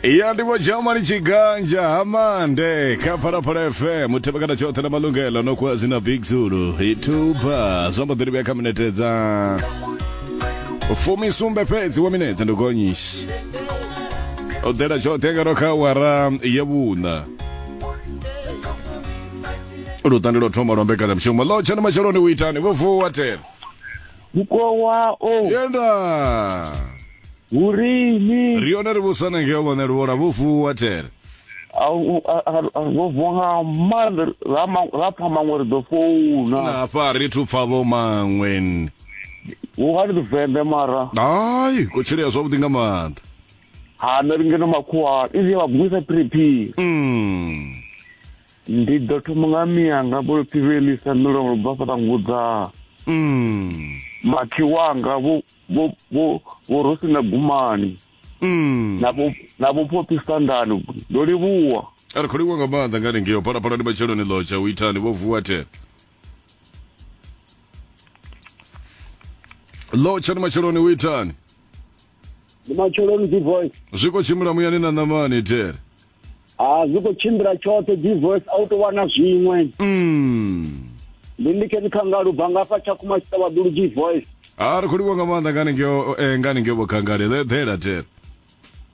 ya ndivho jamani tshiganja ha mande kha phalaphala fm thevhekana tshoṱhe na malungelo no kuwa zwina big zulu ituba zwa mbo ḓi livhuya kha minete dza fumi sumbe fhedzi wa minetse ndi gonyishi o ḓela tshoṱhe ngaro kha wara ya vhuṋa lutandi lwo thoma lwa mbekanyamushumo ḽo tshena matsheloni u itani vho vuwa tena mukowawo yenda hurini ri yone ri vhusana ngeo vhone ri vhona vhufuwa tere vhobvo nga maanḓa ra ma- ra pfa maṅwe ri ḓo founa nafha ri thu pfa vho maṅweni vhungani ḓivende mara hayi kutshilea zwavhuḓi nga maanḓa ha nṋe ri ngeno makhuwa izi ya vhagumisa phiriphiri Mm. ndi ḓo thoma nga miyanga vhulupfi vhe lisa milomo lu bva fhaṱa ngudza Mm. makhiwanga vho vho vho vho rosi na gumani Mm. na vho na vho phopi standard ndo livhuwa a ri khou livhuwa nga maanḓa nga ningeo phalaphala ndi matsheloni ḽotsha u itani vho vuwa the ḽotsha ndi matsheloni u itani ndi matsheloni d voice zwi khou tshimbila muyani na ṋamani tere ha zwi khou tshimbila tshoṱhe d voice a u tou wana zwiṅwe mm. ndi ndi khe dzikhangalo ubva ngafha tshakhuma tshiṱavhaḓulu d voice ha ri khou livha nga maanḓa ngani ngeo eh, ngani ngeo vhokhangale ḓela tere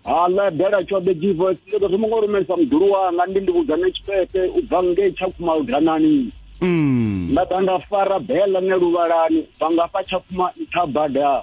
ha ḽa dela tshoṱhe d voice ndi ḓo thoma ngo rumelisa muḓulu wanga ndi ndi vhudzane tshipete u bva ngei tshakhuma ludanani mm. nda ḓa nda fara bela ne luvhalani bva ngafha tshakhuma nṱha bada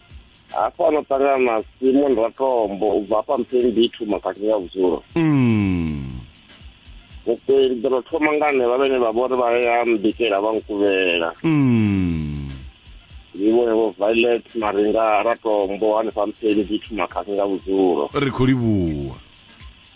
hafha ano ṱangana na simon ratombo u bva hafha mpeni dithu makhathi ya vhudzulo mm. vhukweli ḓo no thoma nga nṋe vha vhene vha vhori vha ya mbikela vha nkuvhela mm. ndi vhone vho violet maringa ratombo hanefha mpeni dithu makhathi nga vhudzulo ri khou livhuwa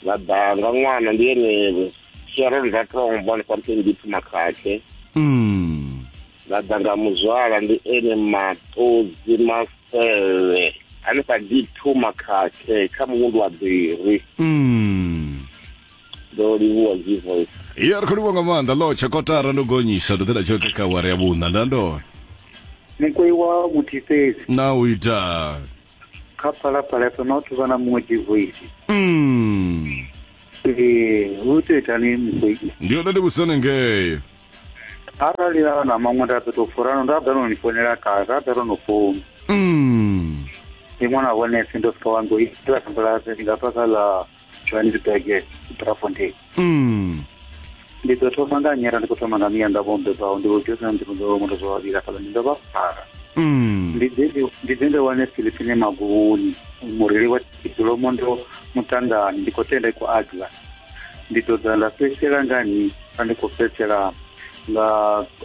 na danga ṅwana ndi ene sharon ratombo hanefha mpeni dithu makhathi mm. Ladanga Muzwala ndi ene maṱodzi masevhe hanefha D2 makhakhe kha muvhundu wa Biri. Mm. Ndo livhuwa G voice. Iya ri khou livhuwa nga maanḓa lo tsha kotara ndo gonyisa ndo ḓela tshoṱhe kha awara ya vhuṋa nda ndona. Mukweiwa Muthifhezi. Na u ita. Kha phalaphala fhe ma vhathu vha na muṅwe G voice. Mm. Ee, hu tou itani mukweiwa. Ndi yone ndi vhusone ngei. arali a na maṅwe nda ḓo tou furano nda ḓa no ni founela kale ra ḓa ro no founu mm. ndi ṅwana wa vhone sendo fika wa ngo ita sambalase ndi nga bva kha ḽa johannesburg drafontein mm. ndi ḓo thoma nga nyera ndi khou thoma nga miya ndavho mbebaho ndi vhojosina ndi muḓo mundo zwa vhavhili afhaḽa ndi ndo vha fara mm. ndi ḓe ndi wane philipine maguvhuni mureli wa tikolomo ndo muṱangani ndi khou tenda i khou adlas ndi ḓo ḓa nda fhedzisela nga ni a ndi khou fhedzisela nga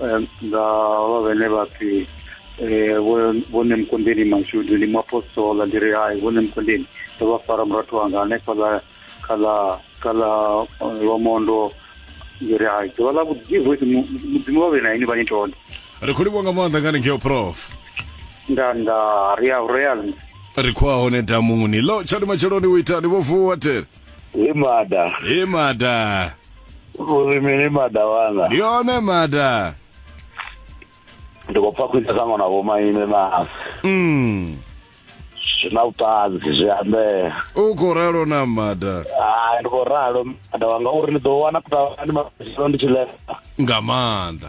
eh, nga vha vhene vha pfi eh, vhone mukondeni mashudu ndi muapostola ndi ri hai vhone mukondeni ndo vha fara murathu wanga hanefhaḽa kha ḽa kha ḽa eh, lwamondo ndi ri hai ḓuvha ḽa vhuḓi voice mudzimu vha vhe na ini vha ni tone ri khou livhuwa nga maanḓa ngani ngeo prof nda nda ri a ri a ri khou a hone damuni lo tshadi matsheloni u itani vho vuwa tere He mada. He mada. Uri mini mada wanga. Ndi hone mada. Ndi khou pfa khwine sa ṅwana vho maine na. Mm. Zwi na vhuṱanzi zwi ambea. U khou ralo na mada. Ah ndi khou ralo mada wanga uri ni ḓo wana kuṱavhani matshelo ndi tshi ḽesa. Nga maanḓa.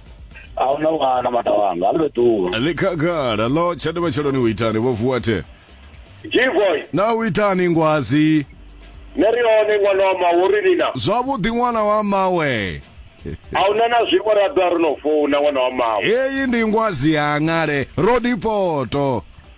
a hu na ṅwana mata wanga a ndo ṱuwa ḽi khagala ḽo tshande matsheloni u itani vho vuwa the g-boy na u itani ngwazi nṋe ri hone ṅwana wa mawo ri lina zwavhuḓi ṅwana wa mawe a hu na na zwiṅwe ra ḓa ri no founa ṅwana wa mawo heyi ndi ngwazi ya ṅale rodipoto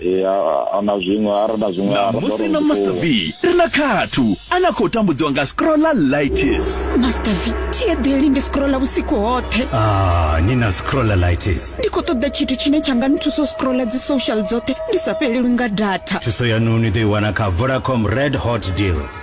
ya ana zwiṅwe ara na zwiṅwe ara musi na master v ri na khathu a na khou tambudziwa nga scrolla lights master v thiedeli ndi scrolla vhusiku hoṱhe ah, ni na scrolla lights ndi khou ṱoḓa tshithu tshine tsha nga nthusa u scrolla dzi social dzoṱhe ndi sa fhelelwi nga data thuso yanu ni ḓo i wana kha vodacom red hot deal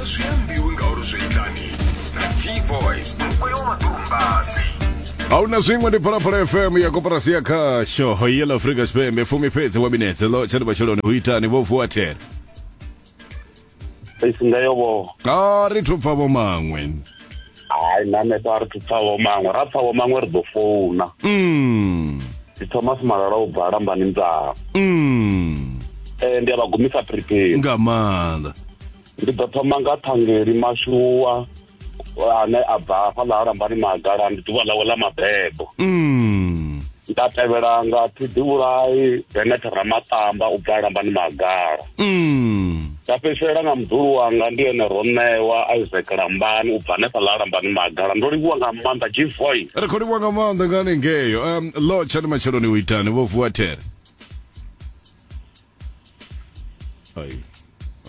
azviambiwi ngauri zvoitani nagt-voice mukwewo maturumbasi hauna zviṅwe ndi phalaphala fm ya koporasi ya khasho yela afrika tshipembe fumi fhedzi wa minetse lo tshati matshiloni hu itani vho vuwa thera isingayoboho a ri thu pfa vho maṅwe hayi nanesa ri thupfavho maṅwe ra pfavho maṅwe ri ḓo founa mm. ndi thomas malala u bva lambani ndzaa mm. eh, ndi a vha gumisa prepare nga maanḓa ndi ḓo thoma nga thangeli mashuwa ane a bva hafhaḽa ha lambani magala ndi ḓuvha ḽawe ḽa mabebo mm. nda tevhela nga ṱhiḓivhulayi benet ramaṱamba u bva lambani magala mm. nda fhedzisela nga muḓulu wanga ndi ene ro ṋewa isaac lambani u bva hanefha ḽa lambani magala ndo livhuwa nga maanḓa gvoy ri khou livhuwa nga maanḓa nga hanengeyo um lo tshani matsheloni u itani vho vuwa there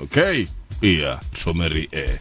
okay iya thomeri e eh.